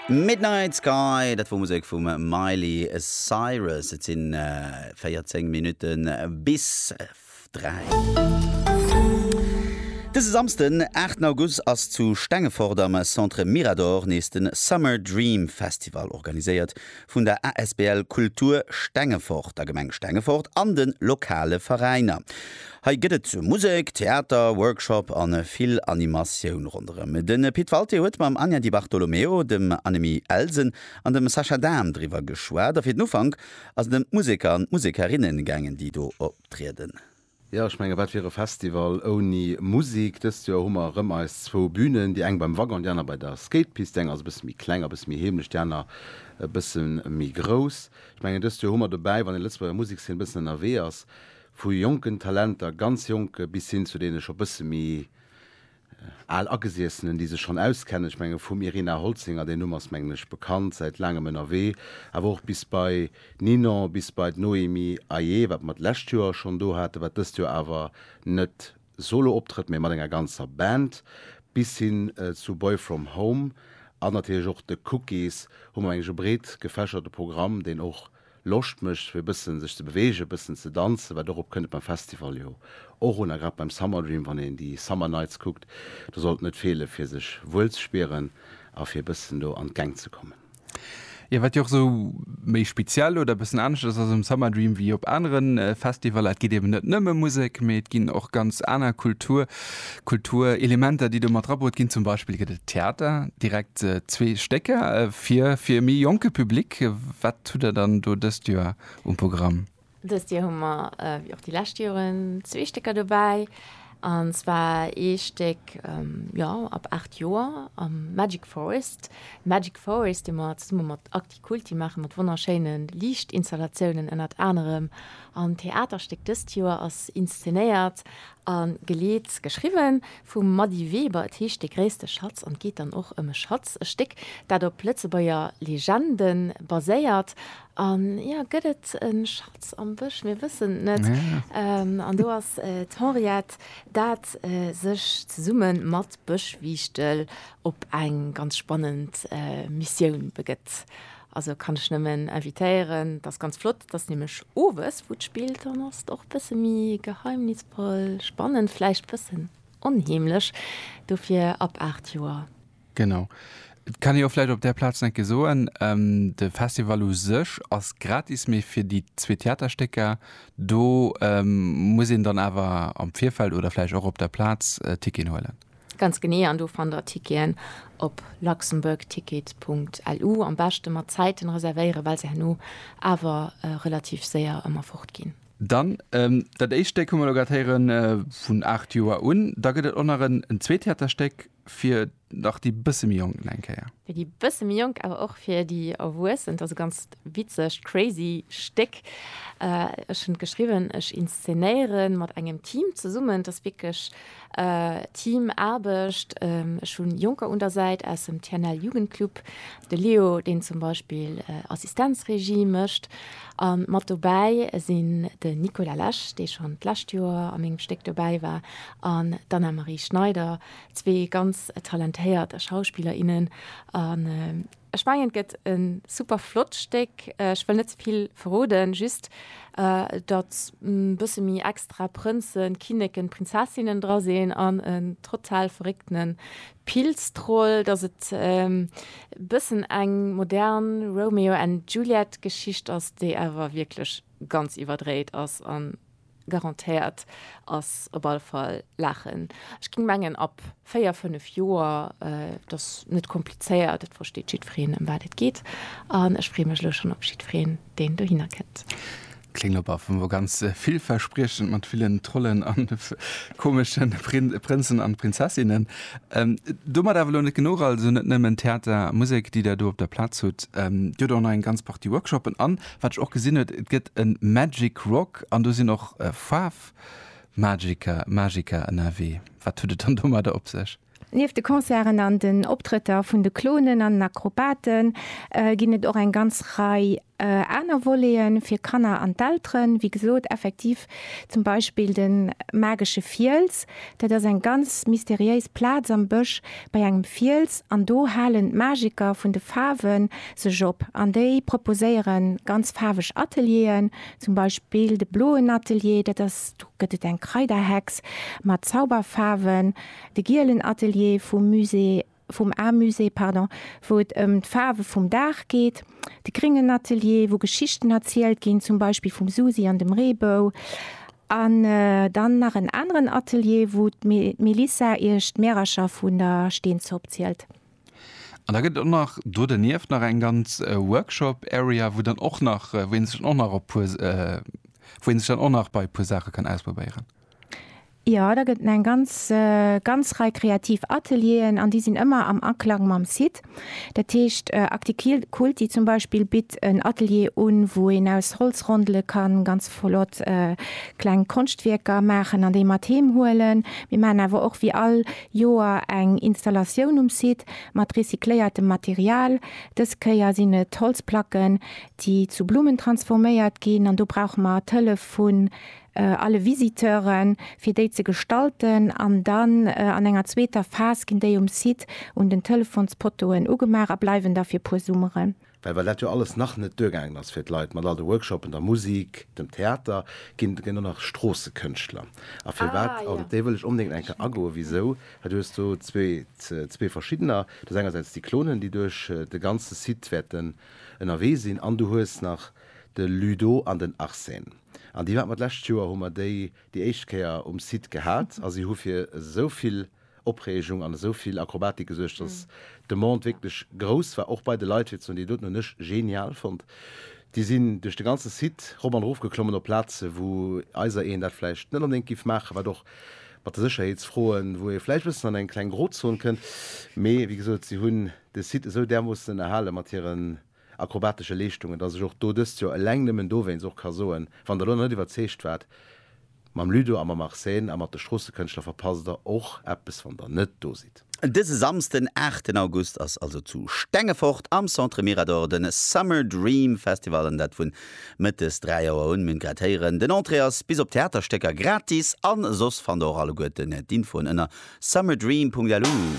Midnight Sky, dat wor Musek vum Miley Cyrus. Et sinn 14 Minutten bis 3. Dëse Samsden, 8 August ass zu Stengefort am Centre Mirador nees den Summer Dream Festival organiséiert vun der asbl Kultur Stengefort, der Gemeng Stengefort an den lokale Veräiner. Hei gëtt et Musek, Theater, Workshop an vill Animatioun ronderëm. Den Pit Walté huet mam Anja Di Bartolomeo, dem Annemie Elsen an dem Sascha Dahm driwwer geschwat. A fir den Ufank ass et ëm d'Museker an d'Musekerinnen gaangen, déi do optrieden. Jo, ech menge wat wier e Festival ouni Musek? Dëst Joer hu mer erëm eis zwou Bünen, déi eng beim Waggon, déi aner bei der Skatepist. Déi eng ass e bësse méi kleng a bësse méi heemlech, déi aner e bësse méi grouss. Ech mengen dëst Joer hu mer dobäi, wann ee Lëtzebuerger Musekszeen e bëssen ënnerwee ass, Vu jonken Talenter, ganz jonke, bis hin zu deene scho bësse méi al Agesiessenen, déi sech schonn auskennen. Ech menge vum Irina Holzinger, deen Numm ass mengen ech bekannt, säit laangem ënnerwee, awer och bis bei Ninon, bis bei d'Noémie Ayer, wat mer d'lescht Joer schonn do haten, wat dëst Joer awer net Solo-Optrëtt, mee mat enger ganzer Band, bis hin zu Boy From Home an natierlech och de Cookies, hu mer mengen ech e breet gefächerte Programm, deen och Loscht mécht fir e bëssen sech ze beweegen, e bëssen ze danzen, wat dorop kënnt et beim Festival jo och un, a grad beim Summer Dream, wann een déi Summer Nights kuckt, do sollt net feele fir sech wuel ze spieren a fir e bëssen do an d'Gäng ze kommen. Jo wat jo och esou méi speziell oder e bëssen anescht ass ass um Summer Dream wéi op anere Festivaler, et geet eben net nëmme Musek, mee et ginn och ganz aner Kultur Kulturelementer déi do mat drabruet ginn. Zum Beispill gëtt et Theater, direkt zwee Stécker fir fir e méi jonke Public. Wat hutt der dann do dëst Joer um Programm? Dëst Joer hu mer, wéi och déi lescht Joren, zwee Stécker dobäi. An zwar ee Stéck, jo, ab 8 Joer, am Magic Forest. Magic Forest, dee mer zesumme mat Actikulti maachen, mat wonnerschéine Liichtinstallatiounen ënnert anerem. An d'Theaterstéck dëst Joer ass inszenéiert a geleet, geschriwwen, vum Mady Weber. Et heescht De gréisste Schatz an et geet dann och ëm e Schatz, e Stéck, dat op Lëtzebuerger Legende baséiert. An ja, gëtt et e Schatz am Bësch? Mir wëssen et net. An do ass d'Henriette, dat sech zesumme mat Bëschwiichtel op eng ganz spannend Missioun begëtt. Also kann ech nëmmen invitéieren, dat ass ganz flott, dat ass nämlech owes, wou d'Spill dann ass. Och e bësse méi geheimnisvoll, spannend, vläicht e bëssen onheemlech, dofir ab 8 Joer. Genau. Et kann ee jo vläicht op där Plaz nach eng Kéier soen, de Festival u sech ass gratis, mee fir déi zwee Theaterstécker, do muss een dann awer am Virfeld oder vläicht och op der Plaz Ticketen huelen. Ganz genee, an do fannt der Ticketen op luxembourgtickets.lu. Am beschte mat Zäiten reservéieren, well se herno awer relativ séier ëmmer fort ginn. Dann dat éischt Stéck hu mer elo grad héieren, vun 8 Joer un. Da gëtt et och nach en zweet Theaterstéck. fir nach déi bësse méi Jonken eng Kéier. Fir déi bësse méi Jonk, awer och fir déi Erwuessen. Et ass e ganz witzegt, crazy Stéck. Ech hunn et geschriwwen, ech inszenéiere mat engem Team zesummen. Et ass wierklech Teamaarbecht. Ech hu Jonker un der Säit aus dem TNL Jugendclub, de Leo, deen zum Beispill Assistenzregie mécht. A mat dobäi sinn den Nicolas Lesch, dee schonn d'lescht Joer a mengem Stéck dobäi war, an d'Anna-Marie Schneider, zwee ganz talentéiert Schauspiller, innen an ech mengen et gëtt e super flott Stéck. Ech wëll net ze vill verroden, just datt e bësse méi extra Prënzen, Kinneken, Prinzessinnen dra sinn an en total verréckte Pilztroll, datt et e bëssen eng modern Romeo and Juliet Geschicht ass, déi awer wierklech ganz iwwerdréit ass an Garantéiert ass op alle Fall Laachen. Ech ging mengen ab 4, 5 Joer. Et ass net komplizéiert, et versteet jiddwereen em wat et geet an ech freeë mech elo schonn op jiddwereen deen dohinner kënnt. Kléng op a vu ganz villverspriechend mat villen Trollen an komesche Prënzen an Prinzessinnen. Domat awer elo net genuch, also net nëmmen Theater a Musek déi der do op der Plaz hutt, Dir hutt och nach eng ganz Partie Workshoppen an Wat ech och gesinn huet, et gëtt e Magic Rock an do sinn och Faarfmagiker, Magiker ënnerwee. Wat huet et dann domadder op sech? Nieft de Concerten an den Optrëtter vun de Clownen an den Akrobaten ginn et och eng ganz Rei aner Volete fir Kanner an d'Elteren. Wéi gesot, effektiv zum Beispill de magesche Fiels. Dat ass eng ganz mysteriéis Plaz am Bësch bei engem Fiels an do halen d'Magiker vun de Faarwen sech op an déi proposéiere ganz faarweg Atelieren, zum Beispill de bloen Atelier, dat ass, do gëtt et eng Kraiderhex mat Zauberfaarwen, de gielen Atelier vum Musée, vum Amusée, pardon, wou et ëm d'Faarwe vum Dag geet, de gréngen Atelier, wou Geschichten erzielt ginn, zum Beispill vum Susi an dem Reebou, an dann nach en aneren Atelier, wou d'Melissa iech d'Märercher vun der Steenzopp zielt. An da gëtt et och nach do dernieft nach eng ganz Workshop Area, wou dann och nach, wou een sech dann och nach op puer, wou een sech dann och nach bei e puer Saache kann ausprobéieren. Jo, da gëtt en eng ganz, ganz Rei kreativ Atelieren an déi sinn ëmmer am Aklang mam Site. Dat heescht Acticulti zum Beispill bitt en Atelier un, wou een aus Holzrondele kann ganz flott kleng Konschtwierker maachen an déi mat heem huelen. Mir maachen awer och wéi all Joer eng Installatioun um Site mat recycléiertem Material. Dës Kéier sinn et Holzplacken, déi zu Blummen transforméiert ginn. An do brauche mer d'Hëllef vun alle Visiteuren, fir déi ze gestalten. An dann an enger zweeter Phas ginn déi um Site un den Telefonspoteauen ugemaach a bleiwen da fir e puer Summeren. Well well dat jo alles nach net duergaangen ass fir d'Leit, mat all de Workshoppen, der Musik, dem Theater, ginn ginn do nach Stroossekënschtler. A firwat, also op déi wëll ech onbedéngt eng Kéier agoen, wisou, well du hues do zwee, zwee verschiddener, du hues engersäits déi Clonen, déi duerch de ganze Site wäerten ënnerwee sinn, an du hues nach de Ludo an den Arsène. An déi haten mer d'lescht Joer, hu mer déi déi éischt Kéier um Site gehat, a si hu fir esou vill. Opreegung an esou vill Akrobatik gesuergt, dass d'Demande wierklech grouss war, och bei de Leit, fir ze hunn, déi doten hunn ech genial fonnt. Déi sinn duerch de ganze Site rop an erof geklommen op Plaze wou eiser een dat vläicht net onbedéngt géif maachen, wat och mat de Sécherheetsfroen, wou ee vläicht e bëssen an eng kleng Grozon kënnt, mee wéi gesot, si hunn de Site esou därmoossen ënnerhale mat hiren. akrobatesche Leeschtungen, dass ech och do dëst Joer eleng nëmmen dowéinst och ka soen, wann Der elo nach net iwwerzeegt waart, Mam Ludo a mam Arsène a mat de Stroossëkënschtler verpasst Der och eppes, wann Der net do sidd. Dëse Samsden, aachten August ass also zu Stengefort am Centre Mirador de Summer Dream Festival an dat vun Mëttes 3 Auer un. Mir hunn grad héieren, den Entrée ass bis op d'Theaterstécker gratis an soss fannt Der och alleguerten d'Infoen ënner summerdream.lu.